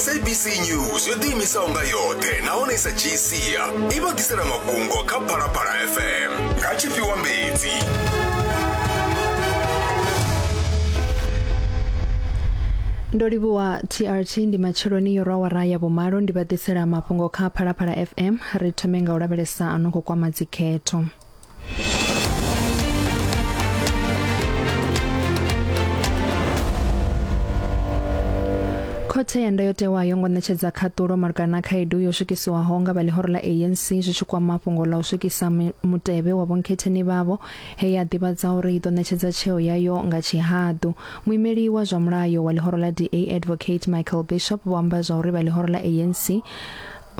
sabc news yo ḓiimisaho nga yoṱhe nahone sa gcia i vha ḓisela mafhungo kha phalaphala fm nga tshifhiwa mbedzi ndo livhuwa trt ndi matsheloni yo rwawara ya vhumalo ndi vha ḓisela mafhungo kha phalaphala fm ri thome nga u lavhelesa a no khou kwama dzikhetho khothe ya ndayotewa yo ngo ṋetshedza khaṱulo malugana na khaedu yo swikisiwaho nga vha ḽihoro ḽa anc zwi tshi kwama fhungo ḽa u swikisa mi- mutevhe wa vhonkhetheni vhavho he ya ḓivhadza uri i ḓo ṋetshedza tsheo yayo nga tshihaḓu muimeli wa zwa mulayo wa ḽihoro ḽa da advocate michael bishop vho amba zwa uri vha ḽihoro ḽa anc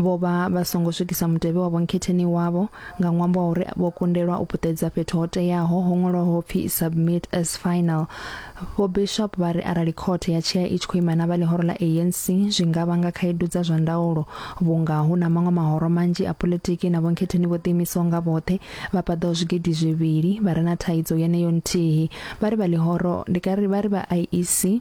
Vho vha vha songo swikisa mutevhe wa vhonkhetheni wavho nga ṅwambo wa uri vho kundelwa u puṱedza fhethu ho teaho ho ṅwalwaho ho pfi submit as final. Vho Bishop vha ri arali khothe ya tshea i tshi khou ima na vha ḽihoro ḽa ANC zwi nga vhanga khaedu dza zwa ndaulo vhunga hu na maṅwe mahoro manzhi a politiki na vhonkhetheni vho ḓiimisaho nga vhoṱhe vha paḓaho zwigidi zwivhili vha re na thaidzo yeneyo nthihi. Vha ri vha ḽihoro ndi kari vha ri vha IEC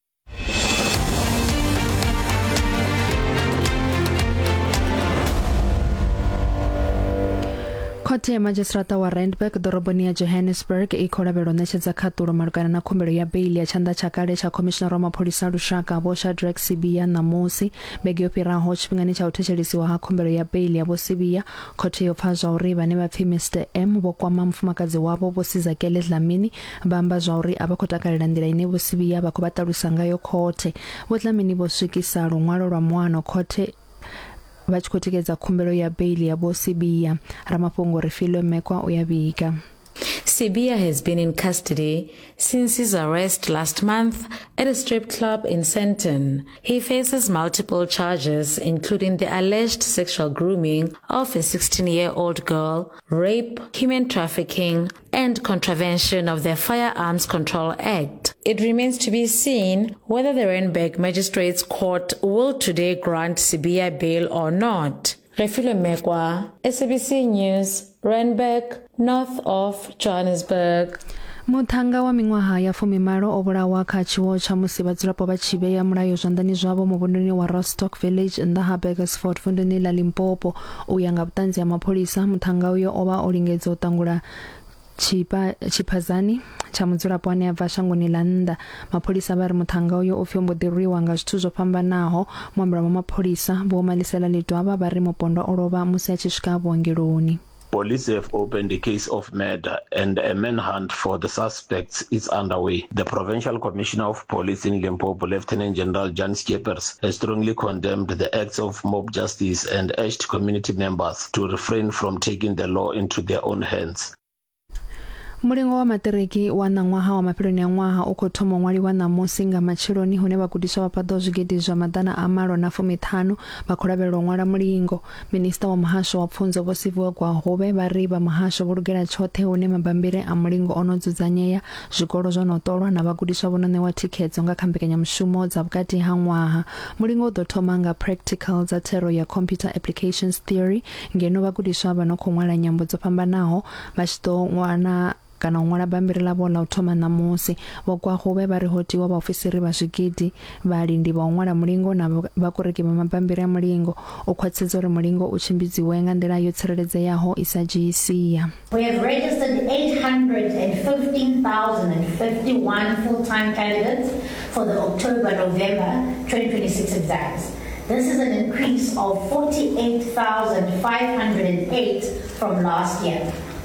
khothe ya madzhisiṱaraṱa wa randburg ḓoroboni ya johannesburg i khou lavhelwa u ṋetshedza khaṱulo malugana na khumbelo ya beili ya tshanḓa tsha kale tsha khomishinara wa mapholisa a lushaka vho shadrack sibia ṋamusi vhege yo fhiraho tshifhingani tsha u thetshelesiwa ha khumbelo ya beili ya vho sibia khothe yo pfa zwa uri vhane vha pfi mr m vho kwama mufumakadzi wavho vho sizakele dlamini Vha amba zwauri a vha khou takalela nḓila ine Vho Sibiya vha khou vha ṱalusa ngayo khothe. Vho Dlamini vho swikisa luṅwalo lwa muano khothe vha tshi khou tikedza khumbelo ya beili ya Vho Sibiya. Ramafhungo Refilwe Mekwa u ya vhiga. Sibiya has been in custody since his arrest last month at a strip club in Sandton. He faces multiple charges, including the alleged sexual grooming of a 16 year old girl, rape, human trafficking, and contravention of the Firearms Control Act. It remains to be seen whether the Randburg Magistrates Court will today grant Sibiya bail or not. Refilwe Mekwa, SABC News, Randburg, north of Johannesburg. muṱhannga wa miṅwaha ya fumimalo o vhulawa kha tshiwo tsha musi vhadzulapo vha tshi vhea mulayo zwanḓani zwavho muvhunduni wa rostock village nnḓa ha burgersford vunduni ḽa limpopo U ya nga vhuṱanzi ha mapholisa, muṱhannga uyo o vha o lingedza u ṱangula tshiphadzani tsha mudzulapo ane a bva shangoni ḽa nnḓa mapholisa vha ri muṱhannga uyo o pfi o mbo ḓi rwiwa nga zwithu zwo fhambanaho muambela wa mapholisa vho malisela ḽidwavha vha ri mupondwa o lovha musi a tshi swika vhuongeloni Police have opened a case of murder and a manhunt for the sus expects is underway. The Provincial Commissioner of Police in Limpopo, Lieutenant General Jan Schippers, has strongly condemned the acts of mob justice and urged community members to refrain from taking the law into their own hands. mulingo wa maṱiriki wa ṋaṅwaha wa mafheloni a ṅwaha u khou thoma u ṅwaliwa ṋamusi nga matsheloni hune vhagudiswa vha paḓaho zwigidi zwa maḓana a malo na fumiṱhanu vha khou lavhelela u ṅwala mulingo Minisiṱa wa Muhasho wa Pfunzo Vho Siviwe Gwahube vha ri vha muhasho vho lugela tshoṱhe hune mabambiri a mulingo o no dzudzanyea, zwikolo zwo no ṱolwa na vhagudiswa vho no ṋewa thikhedzo nga kha mbekanyamushumo dza vhukati ha ṅwaha. Mulingo u ḓo thoma nga practical dza thero ya Computer Applications Theory ngeno vhagudiswa vha no khou ṅwala nyambo dzo fhambanaho vha tshi ḓo wana kana u ṅwala bammbiri ḽavho ḽa u thoma ṋamusi. Vho Kwahube vha ri ho tiwa vhaofisiri vha zwigidi, vhalindi vha u ṅwala mulingo na vhakoreki vha mabammbiri a mulingo u khwaṱhisedza uri mulingo u tshimbidziwe nga nḓila yo tsireledzeaho i sa dzhii sia. We have registered 815,051 full-time candidates for the October-November 2026 exams. This is an increase of 48,508 from last year.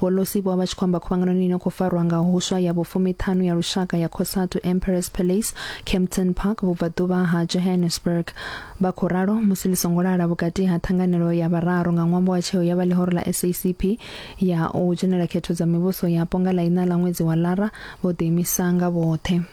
Vho Lossy vho vha vha tshi khou amba khuvhanganoni ino khou farwa nga huswa ya vhufumi-ṱhanu ya lushaka ya Cosatu Emperor's Palace, Kempton Park, vhubvaḓuvha ha Johannesburg. Vha khou ralo musi ḽi songo lala vhukati ha ṱhanganelo ya vhararu nga ṅwambo wa tsheo ya vha ḽihoro ḽa SACP ya u dzhenela khetho dza mivhuso yapo nga ḽa iṋa ḽa ṅwedzi wa Lara vho ḓiimisa nga vhoṱhe.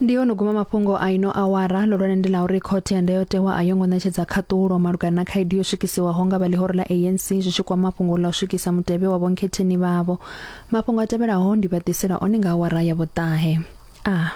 ndi ho no guma mafhungo a ino awara ḽihulwane ndi ḽa uri khothe ya ndayotewa a yo ngo ṋetshedza khaṱulo malugana na khaedu yo swikisiwaho nga vha ḽihoro ḽa anc zwi tshi kwama mafhungo ḽa u swikisa mutevhe wa vhonkhetheni vhavho mafhungo a tevhelaho ndi vha ḓisela one nga awara ya vhuṱahe a ah.